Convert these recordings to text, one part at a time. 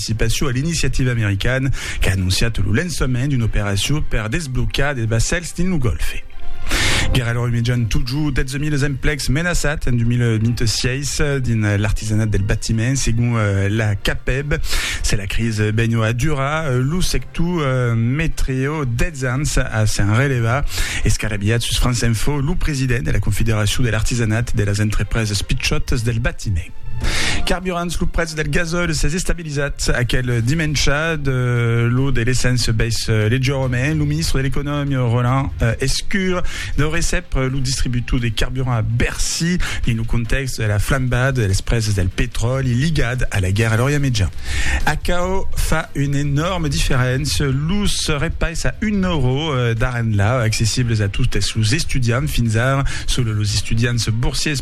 participacion a l'iniciativa americana qu'a anonciat lo lançament d'una operacion per desblocar de vassèls dins lo Gòlfe. Guèrra lor imejan totjorn 12.000 emplecs menaçats en 2026 dins l'artisanat del batiment, segon la CAPEB. Se la crisi benho a durar, lo sector metreo 10 ans a s'en relevar. Escarabilhat sus France Info, lo president de la Confederacion de l'artisanat de las entrepresas pichòtas del batiment. Carburants, lo prètz del gasòl s'es estabilizat aquel dimèncha, de lo de l'essence bais leugièrament. Lo ministre de l'Economia, Roland Lescure, deu recep lo distributor de carburant a Bercy dins lo contèxt de la flambada dels prèses del petròli ligat a la guèrra a l'Orient Mejan. Aquò fa una enòrma diferéncia, los repais a un euro d'ara enlà accessibles a totes los estudiants fins ara, solo los estudiants borsiers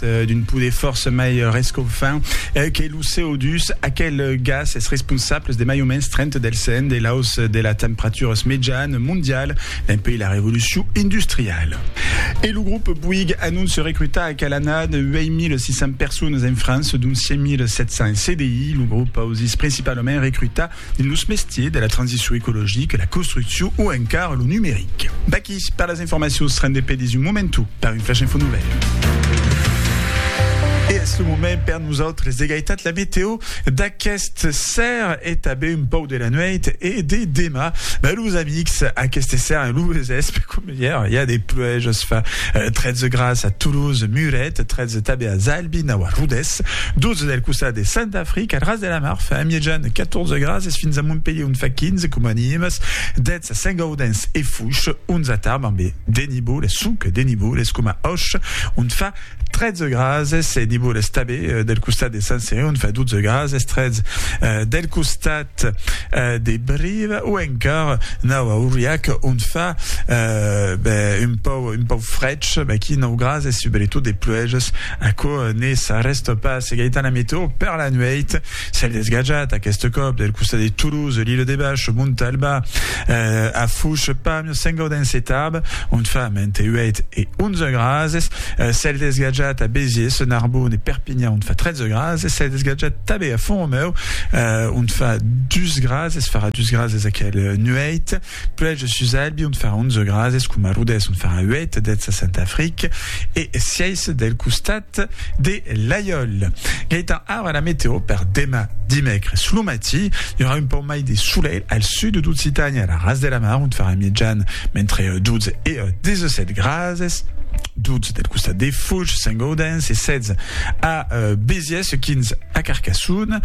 d'un poder fòrça mai rescaufant que lo CO2, aquel gas es responsable de mai o mens 30 del cent de l'aus de la temperaturas mejan mondial dempuèi la revolucion industriala. E lo grop Bouygues anonce recrutar aquel annat 8.600 personas en França, dont 5.700 en CDI. Lo grop ausís principalament recrutar dins los mestiers de la transicion ecologica, la construccion o encara lo numeric. D'aquí per las informacions rende pedis un momento per un flash info novèl. E es lo moment per nosautres de gaitat la meteo d'aqueste ser e tanben un pauc de la nuèit e de demà. Ben los amics, aqueste ser lo vesèspe com. Yeah, yeah, des pluèjas fa 13 grads a Toulouse, Muret, 13 tabé a Zalbi, nau a Rodes, 12 del costat de Saint-Afric, al ras de la mar fa a miejan 14 grads es fins a Montpellier on fa 15 coma Nimes, 10 a Saint-Gaudens e Fouches, 11 a Tarbes ambe de niboles, sonque de niboles, coma Auch on fa 13 grases e divor estabe del costat de Sant Cereon fa 12 grases 13 del costat de Brive o encara nau a Auriac on fa un pau un pau frech aquí 9 grases subretot de pluèges aquò ne s'arrèsta pas Gaëtan la meteo per la nuèit Cèl desgatjat, aqueste còp, del costat de Toulouse, l'Ile de Bach, Montalba, a Fouch, Pamiers, Saint-Gaudens e Tarbes, ont fa mente 8 e 11 grases. Cèl desgatjat a Béziers, Narbonne e Perpignan, ont fa 13 grases. Cèl desgatjat tanben a Font-Romèu, ont fa 2 grases, farà 2 grases aquel nuèit. Puèi jo sus Albi ont farà onze grads, es coma Rodés ont farà uèit dètz a Saint-Afric e sièis del costat de l'Aiòl. Gaètan ara la meteo per demà dimècres. Lo matí i aurà un pauc mai de solelh al sud d'Occitània e a la ras de la mar ont farà mijan mentre 12 e 17 grads, 12 del costat de Fuch, Saint-Gaudens e 16 a Béziers e quins a Carcassonne.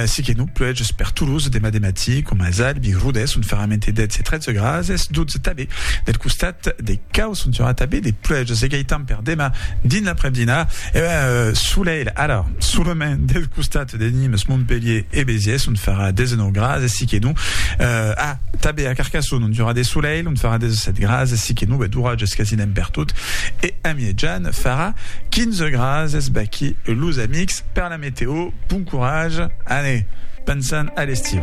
Si que non pluèges per Toulouse demà de matí, coma as Albi, Rodés son ferrament e 10 e 13 grads, es 12 tanben del costat de Cau, son aurà tanben de pluèges. E gaitan per demà dins l'aprèp-dinar, e ben, solelh, ara, solament del costat de Nimes, Montpelhier e Béziers, ont farà 19 grads, e si que non, a, tanben a Carcassonne, ont i aurà de solelh, ont farà 17 grads, e si que non, ben, d'oratges quasiment pertot, e. Amièjan farà 15 grads es baquí los amics per la meteo bon courage ane pensan a l'estiu.